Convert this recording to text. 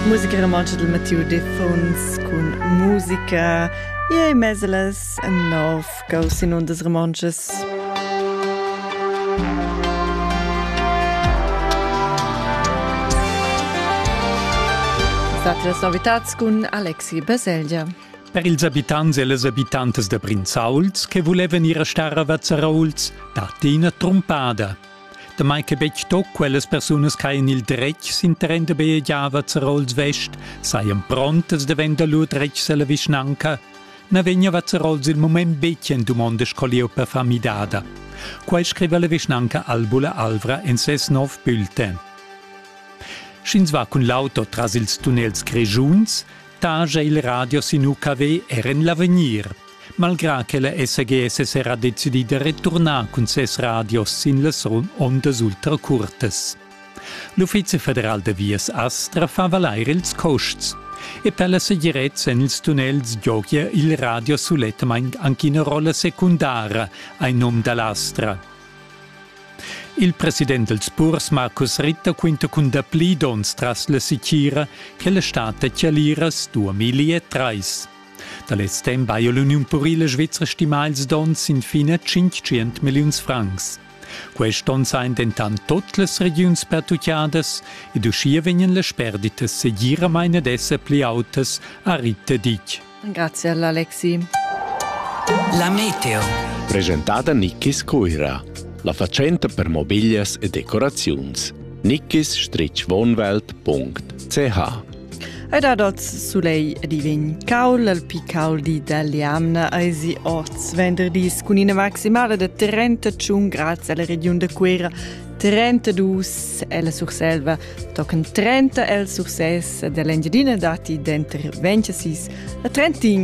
Musica romontscha dal Mattiu Defuns cun musica e meselas en nov gaus in undas romontschas. Satras novitats cun Alexi Baselgia. Per ils abitants e las abitantas da Brinzauls che vulevan ir a star a Vazzarauls datti ina trumpada. Damai che betg tut quellas persunas ch'hajan il dretg sin terren da bajegiava Zerols West sajan prontas davent da lur dretgs a la vischnanca, na vegniva Zerols il mument betg en dumonda sco lieu per far midada. Quai scriva la vischnanca Albula Alvra en ses nov bulletin. Sch'ins va cun l'auto tras ils tunnels grischuns, taja il radio sin UKW er en l'avegnir. Malgrà che la SGS è era decidida returnar cun ses radios sin las ondas ultracurtas. L'Uffizi federal da vias Astra fa valair ils costs e per la segirezza en ils tunnels giogia il radio sulettamain anche una rolla secundara ai nom dall'Astra. Il president dels purs Markus Ritter quinta cun dapli dons tras la sicira che la stat da Chialiras 2003. Da lez temp haja l'Uniun purila svizra stimà ils donns infin a 500 milliuns francs. Quest onn sajan dentant tut las regiuns pertutgadas ed uschia vegnan las sperditas segiramain ad esser pli autas, ha Ritta Dick. Grazie all'Alexi. La meteo. Presentada Nickis Cuira, la fatschenta per mobiglias e decoraziuns. nikkis-wohnwelt.ch Ei dat oz sulegl ed i vegn caul. Il picaul di dall'jamna eisi oz venderdis cun ina maximala da 31 grads ella regiun da Cuera. 32 ella Surselva, tochen 30 el Sursès ed ell'Engiadina datti denter 26 e 31